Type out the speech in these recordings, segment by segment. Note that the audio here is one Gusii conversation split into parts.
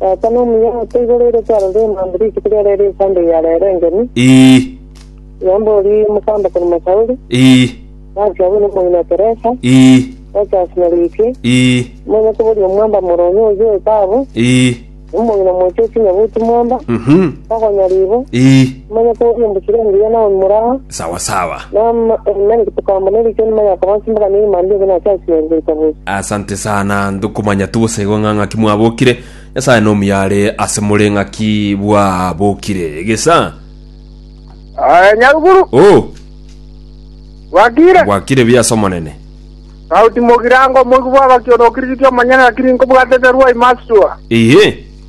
Tata nomuya otoiboreire twarore emambe rituko ria rero esande ya rero engeni, Ii, nyomba oria omokamba korema Sauli, ii, Nansi abwo nomong'ina o Teresa, ii, gocha Asinaruiti, ii, omonyakoborio omwamba Moroni o Joetabu, ii, omong'ina mocha o Chinyabuti mwamba, mhm, Togonyaribo, ii, Manya togokina mbusire engiya na omura aa. Sawa sawa. Nari gotokamba ne rikia nyuma ya koba nsimbaga ne ime ande obe nache ase yari goika bosi. Asante sana ndokomanya togosegwa ng'a ng'aki mwabokire. Nyasaye nomuya are ase more ng'aki bwabokire. Egesa. Aye nyaruguru. Oh. Gwakire. Gwakire buya ase omonene. Sauti mogirango moigwe bwabaki onokirigitia omonyene lakini nkobwatete rwa imastua. Ehe.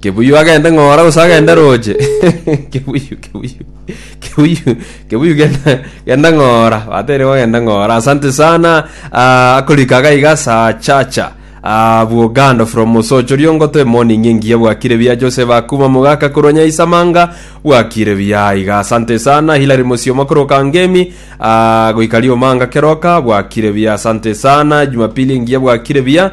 Kebuyu agende ng'ora gose agende roche? Kebuyu, Kebuyu, Kebuyu, Kebuyu genda, genda ng'ora. Bateire gogenda ng'ora. Asante sana. Ah, akorika iga iga saa chacha. Ah, bwogando from Mosocho riongoto emoning engiya bwakire biya Joseph Akuma mogaka korwa Nyaisamanga bwakire biya iga asante sana Hilary Mosioma koroka ngemi ah, goika riomanga keroka bwakire biya asante sana Jumapili engiya bwakire biya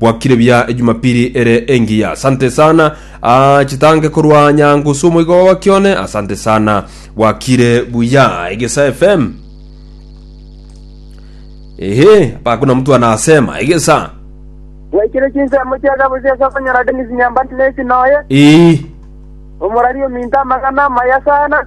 Bwakire buya ejumapili ere engiya. Asante sana. Ah, chitange korwa nyangusu omoigo baba kione. Asante sana. Bwakire buya egesa FM. Ehe, bakuna mtu anasema egesa. Bwaikire chinsemo chia Gabusia ase okonyora Dennis Nyambani na esi noye, Ii. omorari ominto amang'ana amaya sana.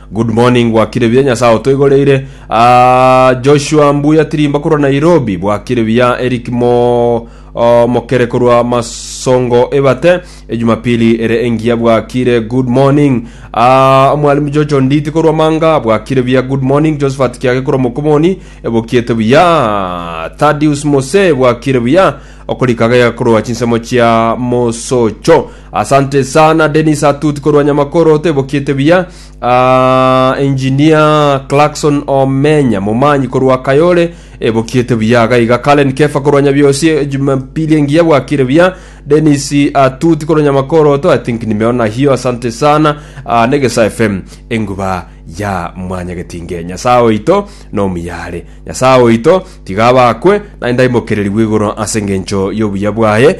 Good morning bwakire buya nyasaye otoigoreire Ah, Joshua mbuya tirimba korwa Nairobi bwakire buya Eric mo oh, mokere korwa masongo ebate ejumapili ere engiya bwakire good morning Ah, mwalimu Jojo nditi korwa manga bwakire buya good morning Josephat kiage korwa mokomoni ebokiete buya Thaddeus mose bwakire buya okorikaga yakorwa chinsemo chia mosocho Asante sana Dennis Atut korwa Nyamakoro tebokiete buya. Ah, engineer Clarkson Omenya momanyi korwa Kayole ebokiete buya gaiga. Karen Kefa korwa Nyabiosi Jumapili engiya bwakire buya. Dennis Atut korwa Nyamakoro to I think nimeona hiyo asante sana. Ah, Negesa FM enguba ya mwanyagetinge nyasaye oito nomuyare nyasaye oito tiga abakwe naende aimokererigwe igoro ase engencho y'obuya bwaye